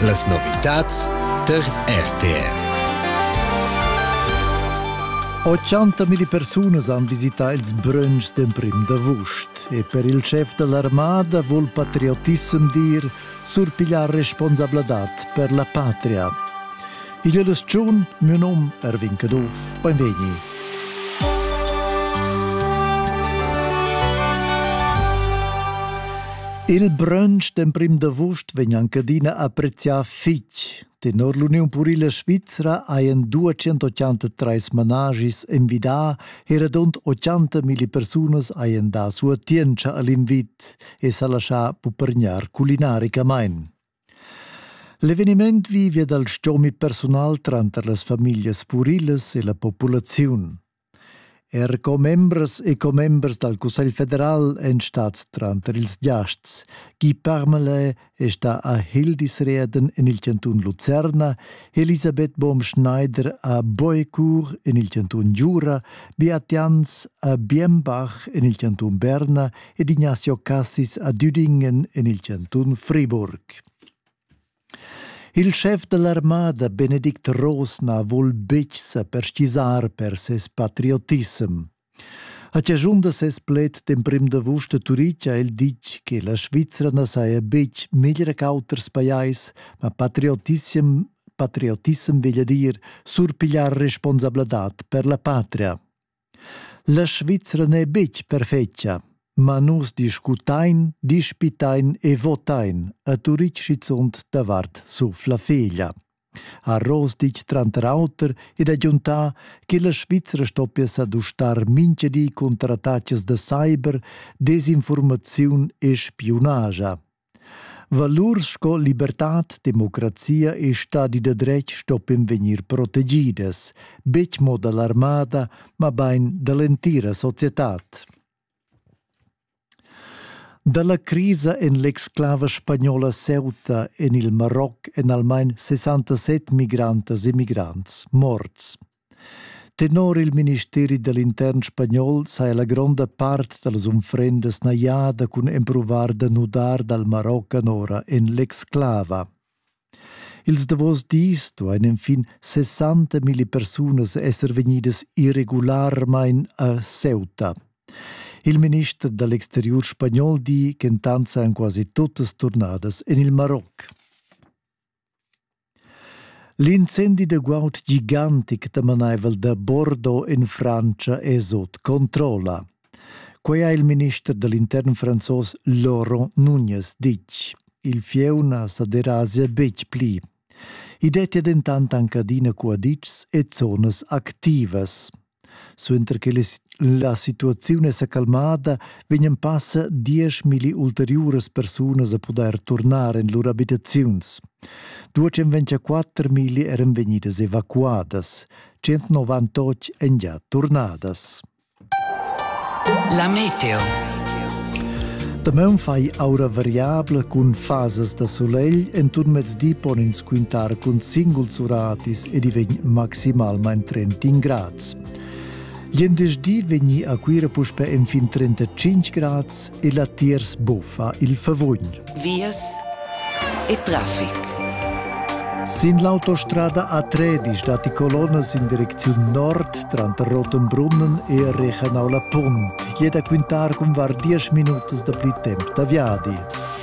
Las novitads tar RTR. 80.000 persunas han visità ils brunchs d'emprim d'avust e per il chef da l'armada vul patriotissem dir surpigliar responsabladad per la patria. Igl è l'ustiun, mio nom Erwin Caduff, benvegni. Il brunch d'emprim d'avust vegn anche adina apprezià fitg. Tenor l'Uniun Purila Svizzera hajan 283 managis envidà e radund 80 mila persunas hajan dà sua tientscha all'invit e s'ha lascià pupergnar culinaricamain. L'eveniment vivia dal stgomi persunal tranter las famiglias purilas e la populaziun. Er commembras e commembers dal Cussegl federal èn stads tranter ils giasts. Guy Parmelin è stà a Hildisreden en il cantun Lucerna, Elisabeth Baum-Schneider a Boecourt en il cantun Giura, Beat Jans a Biembach en il cantun Berna ed Ignazio Cassis a Düdingen en il cantun Friburg. Il schef dell'armada Benedikt Rosna vul betg sa perschisar per ses patriotism. A ciascun da ses pled d'emprim d'avust a Turic ha el ditg che la Svizzera na saja betg meglier qu'auters pajais, ma patriotism, patriotism veglia dir surpigliar responsabladad per la patria. La Svizra n'è betg perfetga, ma nus discutain, dispitain e votain a Turitg schizunt davart sur la feglia, ha Ross ditg tranter auter ed agiuntà che la Svizra stoppia sa dustar mintga di cunter attacas da cyber, desinfurmaziun e spiunaja. Valurs sco libertad, democrazia e stadi da dretg stoppien vegnir protegidas, betg mo da l'armada, mabain da l'entira societad. Da la crisa en l'exclava spagnola Ceuta en il Maroc èn almain 67 migrantas e migrants morts. Tenor il ministeri da l'intern spagnol saja la gronda part da las unfrendas najada cun empruvar da nudar dal Marocco anora en l'exclava. Ils davos dis duain enfin 60.000 persunas esser vegnidas irregularmain a Ceuta. Il minister dall'exteriur spagnol di ch'entant sajan quasi tuttas turnadas en il Maroc. L'incendi da guaud gigantic damanaivel da Bordeaux en Frantscha è sut controlla. Quai ha il minister da l'intern franzos Laurent Nunez ditg. Il fieu na sa derasia betg pli. I dettia dentant anc adina cuaditschs e zonas activas. Suenter che la situaziun è sa calmada, vegnan passa dieschmilli ulteriuras persunas a pudair turnar en lur abitaziuns. 254 eran vegnidas evacuadas, 198 èn già turnadas. La meteo. Damaun fai aura variabla cun fasas da solegl enturn mez di pon ins quintar cun singuls uratis ed i vegn maximalmain 30 grads. Glindesdi vegni a Cuira puspe enfin 35 grads e latiers buffa il favugn. Vias e traffic. Sin l'autostrada A13 datti colonnas in direcziun nord tranter Rotenbrunnen e Regenau la Punt. Jeda quintar cun var 10 minutas da pli temp da viadi.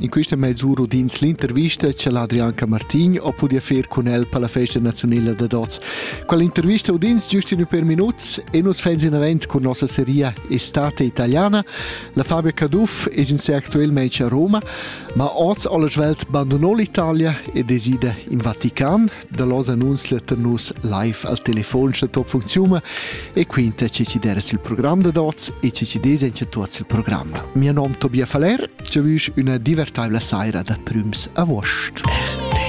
In quista meisura udins l'intervista cha l'Adrian Camartin ho pudü fer cun el per la festa naziunela da dots. Quell'intervista udins giust ün per minuts e nus fans in avant cun nossa seria Estate Italiana. La Fabia Caduff es in sé actuelmente a Roma, ma oz ho la svelt bandunò l'Italia ed esida in Vatican, da los annunzs letter nus live al telefon scha top funcziuma e quinta che ci deres il program da dots e che ci des en tuots il program. Mio nom Tobias Faller, ci vüsch üna divertaivla saira da prüms a vuost.